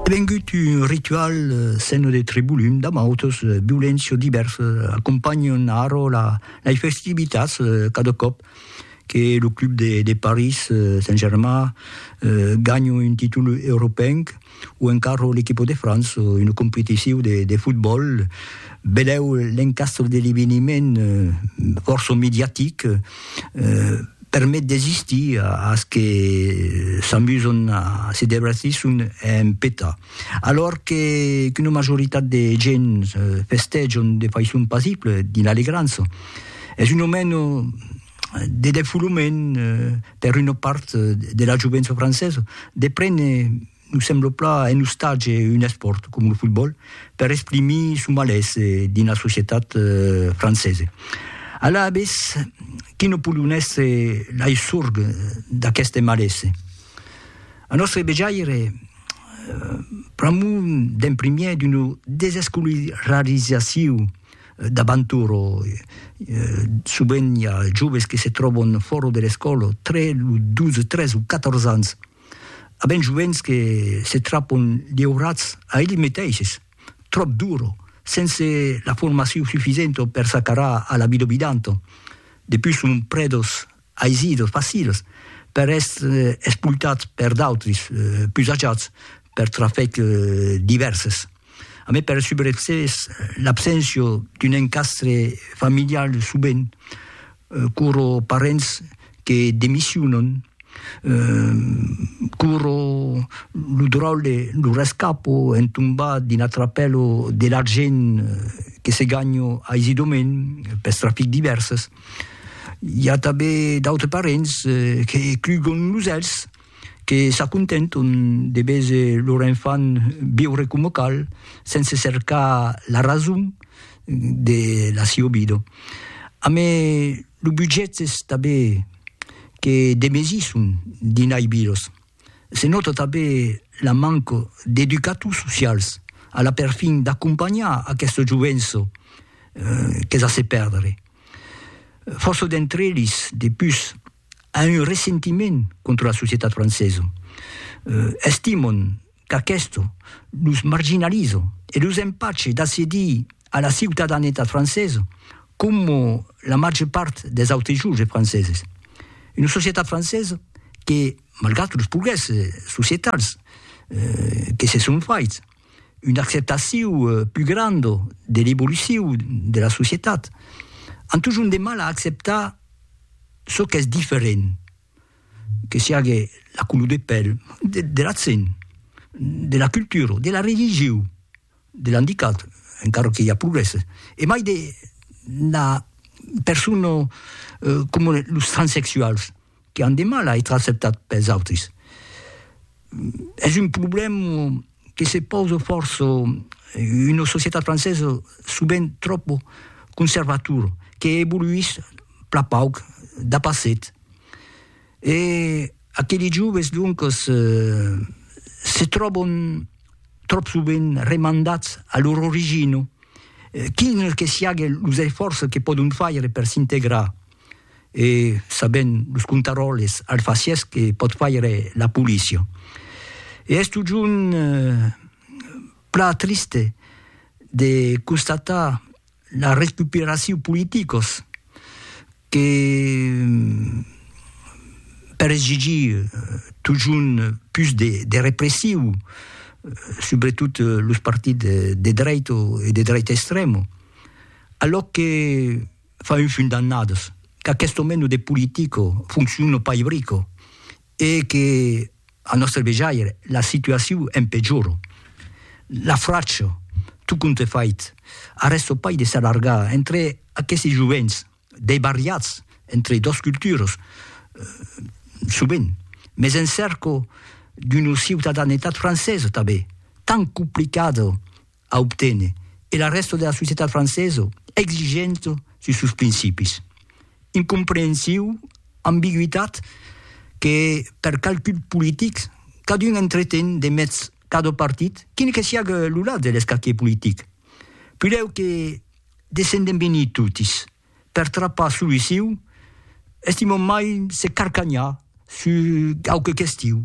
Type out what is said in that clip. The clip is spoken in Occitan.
Vengut un ritual seno de tribulum damb autos viulents o diverses, acompanhon arro lai festivitats cada còp que lo club de París Saint-Germain ganha un títol europenc o encara l'equipa de França en una competicion de fotbòl. Vedèu l'encastre de l'eveniment fòrça mediatic. permet d'existir as que s'amuson a se debratir son en peta. Alòr que qu'una majoritat de gents festejon de faiçon pasible dins l'alegrança, es un aument de defolament per una part de la jovença francesa de prene Nos sembla pla un ostatge, un espòrt, com lo fotbòl, per exprimir son malés dins la societat francesa. Alavetz, qu'i no podon èstre lai sorg d'aqueste malés? A nòstre vejaire, pr'amor d'un primièr d'una desescolarizacion d'abantura, sovent i a joves que se tròban fòra de l'escòla tre los 12, 13 o 14 ans, A ben joens que se trapon liurats a elli meteishes, tròp duro, sense la formacion sufisento per s'acarar a la vida obidanto. De pus son prèdos aisidos, facils, per èstre espultats per d'autris, pus ajats, per trafec divèrses. A mai per subreccès, l'abséncia d'un encastre familial subent curo parents que demissionan, curo lo dròlle, lo rescapo en tombar dins la trapèla de l'argent que se ganha aisidament pels trafics divèrses. I a tanben d'autres parents que clugan los èlhs, que s'acontenton de véser lor enfant viure coma cal, sense cercar la rason de la siua vida. Amé lo budget es tanben que demesisson dinai vidas. Se nòta tanben la manca d'educators socials a la perfin d'acompanhar aquesta jovença qu'es a se perdre. Fòrça d'entre eles, de pus, A un ressentiment contra la societat francesa. Estimon qu'aquesto los marginaliza e los empache d'accedir a la ciutadanetat francesa coma la màger part dels autres joves franceses. Una societat francesa que, malgrat los progrèsses societals que se son faits, una acceptaciu plus granda de l'evoluciu de la societat, an totjorn de mal a acceptar çò qu'es diferent, que siague la color de pèl, de l'accent, de la cultura, de la religiu, de l'andicat, encara que i a progrèsses, e mai de la persona comunes, los transsexuals. que an de mal a ètre acceptats pels autris. Es un problèm que se pausa fòrça una societat francesa sovent tròp conservatora, que evoluís plan pauc dab acet. E aqueli joves, doncas, se tròban tròp sovent remandats a lor origina, quin que siague los esfòrces que pòdon faire per s'integrar. e sabent los contaròles alfacièrs que pòt faire la polícia. E es totjorn plan triste de constatar la recuperacion politicos que per exigir totjorn pus de repressiu subretot los partits de dreit e de dreit extrèma, alò que fa un fum d'annadas, qu'aquesto meno de politico foncciona pas ibrico e que, a nòstre vejaire, la situacion empejora. La fracha, tot compte fait, arrèsta pas de s'allargar entre aquesti jovents debariats entre dos culturas, sovent, mès en cerca d'una ciutadanetat francesa tanben, tant complicada a obténer e la rèsta de la societat francesa exigenta sus sos principis. Incomprehensiu, ambigüitat que per calculs politics cadun entreten de mèths cada partit, quin que siague lo lat de l'escaquier politic. Pudèu que descendem venir totis per trapar soluciu, estimam mai se carcanhar sus quauque question